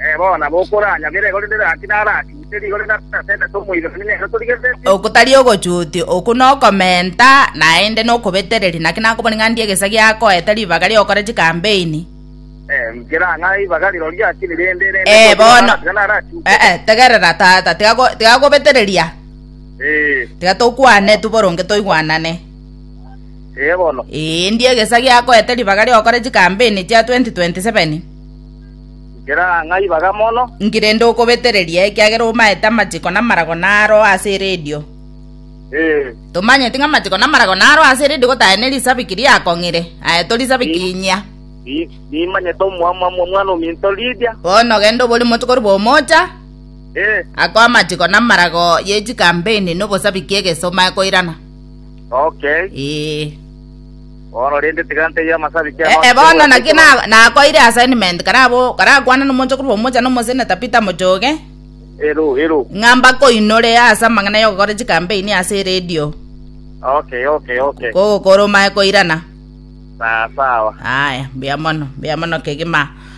Ee, bono nabo okoranyabera igoro rinde gaki narachute rigoro na naterete omoiranani nere otorigereretie. Oko tari ogochutia, okwo nokomenta, naende nokobetereria. Naki nakobori ng'a ndie egesa giakoete ribaga ri'ogokora chikampeini. Ee, nkera ng'a ribaga rirorio akire rende rende Ee, otoke bono. naratiga narachute. Eh, eh, tegerera, tata, tiga go- tiga gobetereria. Ee, Tiga tokwane tu boronge toigwanane. ee bono. Ee, ndie egesa giakoete ribaga ri'ogokora chikampeini chia 2027. Nkere aa ng'ai baga mono? Nki rende okobetereria, ekiagera omaete amachiko na amarago naro ase eredio? Ee. Tomanyeti ng'a amachiko na amarago naro ase eredio gotae ne risabiki riakong'ire? Aye tori sabiki Ni- inyia. Ni- Nimanyete omwamwamwa omwana ominto Lidia. Bono genda obori moche korwa bomocha, Ee. ako amachiko na amarago ye chikampeni na obosabiki egeso omae koirana. Okay. Ee. Bono rende tiga ntebie amasabiti aya onsi. Eh, bono naki nakoeire assignment karabo karakwane nomonchokoro bwa omocha na omoseneta Peter Mochoge. Ero, ero. Ng'a mbakoinore ase amang'ana y'ogokora chikampeini ase eredio. Okay, okay, okay. Kogokora omae koirana. Sawa, sawa. Aya, mbuya mono, mbuya mono kegima.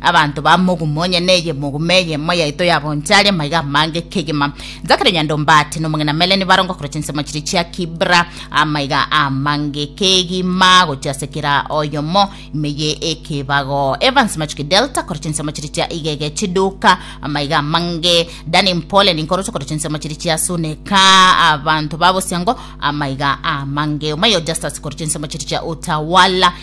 Abanto ba mogumo, onye neye mogumo eyemo yaito yagoncha aria maiga amange kegima. Zakaria Nyandombati na omong'ina Mele nibarongo korwa chinsemo chiria chia Kibra amaiga amange kegima gochia ase kera oyomo ime ye ekebago. Evans Machuki Delta korwa chinsemo chiria chia Igege Chiduka amaiga amange. Danny Mpole Ninkorusu korwa chinsemo chiria chia Suneka abanto ba Bosiango amaiga amange. Omayo Justus korwa chinsemo chiria chia Utawala